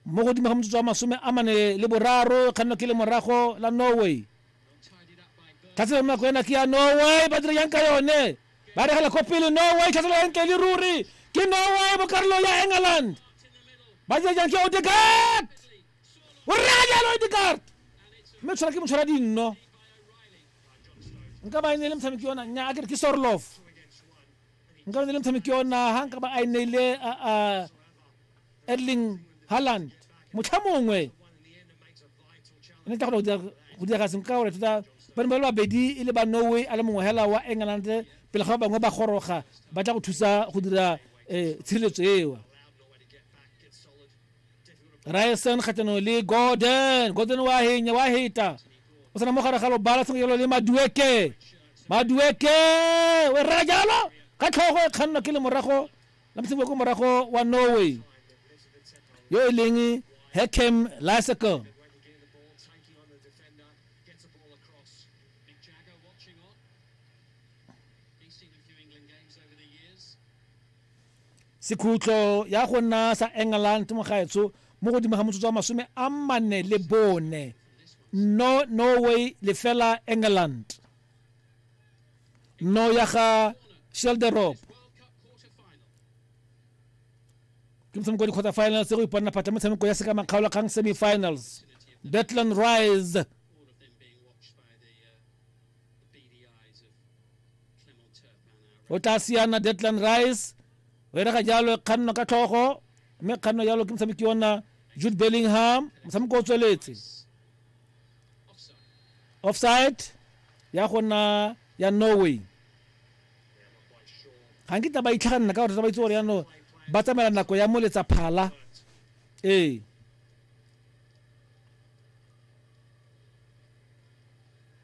mo godimo ga motsotso wa masome a mane le boraro e kgannwa ke le morago la norway tlhatselo nako ena ke ya norway ba dira yang ka yone ba regela ko pele norway tlhatselo ya ntle le ruri ke norway mo karolong ya england ba dira jang ke odegard o rega jalo odegard mme tshwara ke motshwara dinno nka ba e ne le motshameki yona nya a kere ke sorlof nka ne le motshameki ona ha nka ba a e neile erling harland motlha mongwe ne tla go dira seng ka gore tota ba ne ba le babedi e le ba norway a le mongwe hela wa england pele ga ba bangwe ba goroga ba tla go thusa go dira um tshireletso eo ryerson kgatlhanong le gordon gordon wa henya wa heta o tsena mo gare ga lobala sengwe jalo le madueke madueke o e rera jalo ka tlhogo e kgannwa ke lemorago la moseboko morago wa norway yo e leng hackham lysicle Sekhutlo ya go nna sa England mo gaetsho mo godimo ga motsotso wa masome a mane le bone. No Norway lefela England. No ya ga Shelderop. Ke motshameko wa di-quarter finals go iponela phatla motshameko ya seka makgaolakgang semi-finals. Betland Rise o tla siana deadland rice o erega jalo e kganno ka tlhogo mme kganno jalo ke motshameki ona jude bellingham motshameko o tsweletse offside ya gona ya norway ga nkitla ba itlhaganela ka gore ba itse gore yano ba tsamaela nako ya moletsa phala ee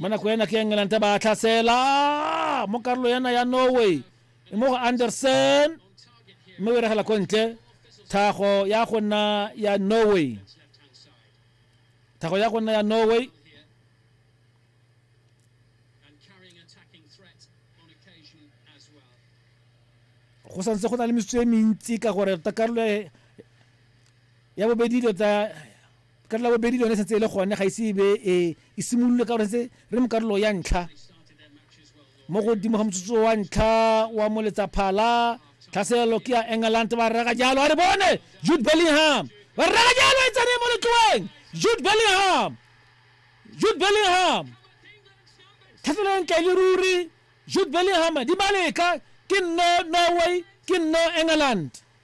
mo nako ena ke england ba tlhasela mo karolo yana ya norway mo go anderson mme o regela ko ntle thago ya go nna ya norway thago ya go nna ya norway go santse go na le metsotso e mentsi ka gore ta karolo ya bobedi dilo ta ka tla bobedi le yone setse e le gone ga ise ebe e e simolole ka gore setse re mo karolo ya ntlha mo godimo ga motsotso wa ntlha wa moletsaphala tlhaselelo ke ya england ba reka jalo a re bone jude bellingham ba reka jalo e tsene mo letloeng jude bellingham jude bellingham tlhaselelo ntle le ruri jude bellingham di maleka ke nno norway ke nno england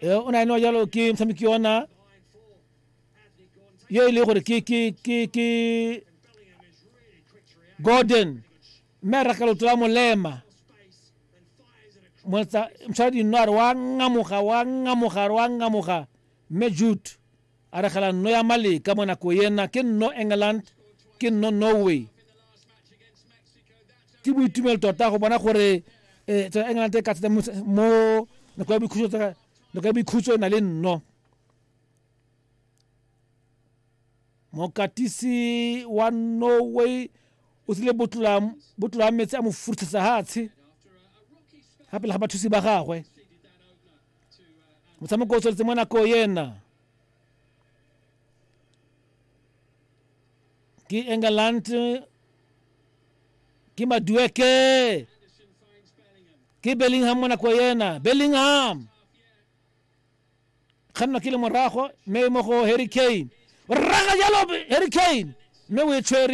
e o na eno jalo ke motshameki ona yo e le gore ke ke ke ke gordon mme a raka loto la molema motshwara dinno a re wa ngamoga wa ngamoga a re wa ngamoga mme jute A re gela nno ya Maleka mo nako ena ke nno England, ke nno Norway. Ke boitumelo tota go bona gore eh, tsela England e ka thata mo mo nako ya boikhutso tsa- nako ya boikhutso e na le nno. mokatisi wa norway o tsile botlola botlola metsi a mo furuthetsa hatshe ga pele ga bathusi ba gagwe motshameko o tsweletse mo nako ena ke england ke madueke ke bellingham mo nako ena bellingham kganna ke le morago mme mo go harry kane o raga jalo harry kane mme o e tshwere